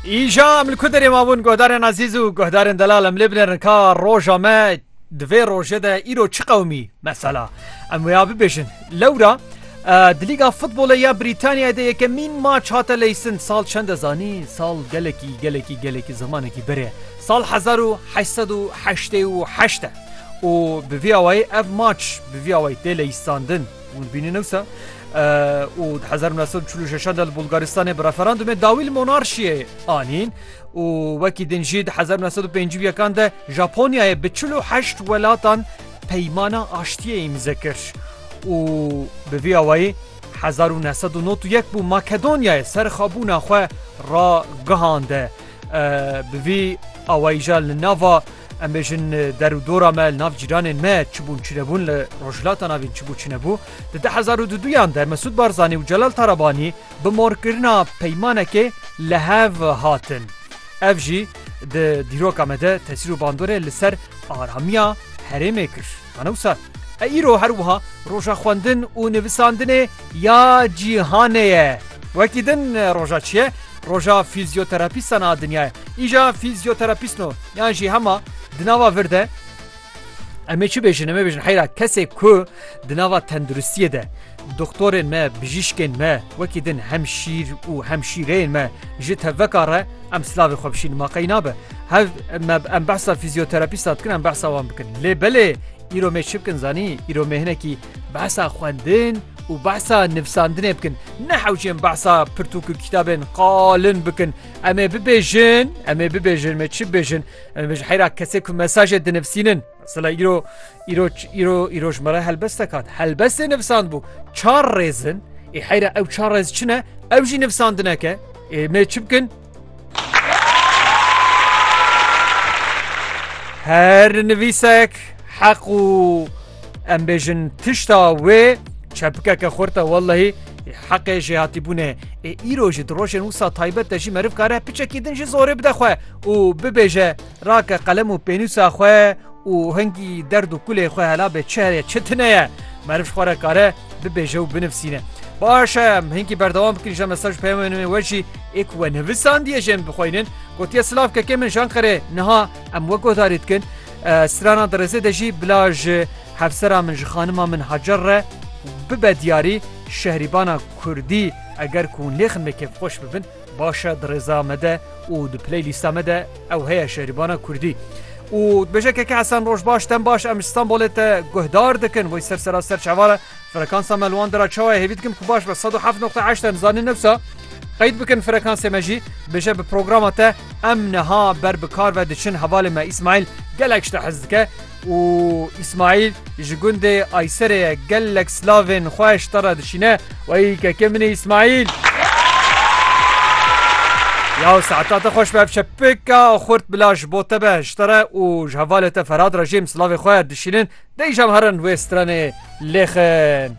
Îja em li ku derê mabûn guhdarên ezîz û guhdarên delal em lê binêrin ka roja me di vê rojê de îro çi qewmî mesela em wêya bibêjin lewra di lîga futbolê ya Brîtanyayê de yekemîn maç hate leysin sal çend e zanî sal gelekî gelekî gelekî zimanekî berê sal hezar û heşt sed û heştê û heşt e û bi vî awayî ev maç bi vî awayî tê leyisandin Hûn bînin ewsa û di hezar nû sed û çil û şeşan de li Bulgaristanê bi referandumê dawî li monarşiyê anîn û wekî din jî di hezar nû sed û pêncî û yekan de Japonyayê bi çil û heşt welatan peymana aştiyê îmze kir û bi vî awayî hezar û neh sed û nod û yek bû Makedonyayê serxabûna xwe ragihande bi vî awayî jî li nava Em bêjin der û dora me li nav cîranên me çibûn çinebûn li Rojhilata Navîn çibû çinebû. Di du hezar û du duyan de Mesûd Barzanî û Celal Tarabanî bi morkirina peymanekê li hev hatin. Ev jî di dîroka me de tesîr û bandorê li ser aramiya herêmê kir. Ana wisa? E îro her wiha roja xwendin û nivisandinê ya cîhanê ye. Wekî din roja çi ye? Roja fîzyoterapîstan a dinya ye. Îja fîzyoterapîstno yan jî hema di nava vir de em ê çi bêjin? Em ê bêjin heyra kesê ku di nava tenduristiyê de Doktorên me, bijîşkên me wekî din hemşîr û hemşîreyên me ji tevveka re em silavê xwe bişînin ma qey nabe hev me em behsa fîzyoterapîsta dikin em behsa wan bikin lê belê îro mê çi bikin zanî îro mê hinekî behsa xwendin û behsa nivsandinê bikin nehewcên behsa pirtûk û kitabên qalin bikin em ê bibêjin em ê bibêjin me çi bêjin em ê bêjin heyra kesê ku mesajê dinivsînin Sila îro îro îro îro ji me re helbest dekat. Helbestê nivsand bû çar rêzin ê e heyra ew çar rêz çi ne ew jî nivsandineke ê e, me çi bikin? Her nivîsek heq û em bêjin tişta wê çepikeke xurte wellehî heqê jê hatîbûnê ê îro jî di rojên wisa taybet de jî meriv kare piçekî din jî zorê bide xwe û bibêje Rake qelem û pênûsa xwe û hingî derd û kulê xwe hela bê çi heye çi tune ye meriv ji xwe re kare bibêje û binivîsîne. Baş e em hingî berdewam bikin ji mesaj û peyamên we jî ê ku we nevisandiye jê em bixweynin. Gotiye silav kekê min ji Anqerê niha em we guhdarî dikin. Strana Dirêzê de jî bila ji hevsera min ji xanima min Hacer re bibe diyarî şehrîbana kurdî eger ku hûn lê xinmê kêfxweş bibin. Baş e di rêza me de û di playlîsta me de ew heye şerîbana kurdî. û dibêje keke Hesen roj baş dem baş em Stenbolê te guhdar dikin wê ser sera ser çavara frekansa me li wan dira çawa hêvî dikin ku baş be 107.8 em zanîn newsa qeyd bikin frekansê me jî bêje bi programa te em niha ber bi kar ve diçin hevalê me İsmail gelek ji te hez dike û Îsmaîl ji gundê Ayserê ye gelek silavên xwe ji te re dişîne Wey kekê min ê Îsmaîl Ya saeta te xweş be ev çepika xurt bila ji bo te be ji te re û ji hevalê te Ferhad re jê em silavê xwe dişînin dêjam herin wê stranê lêxin.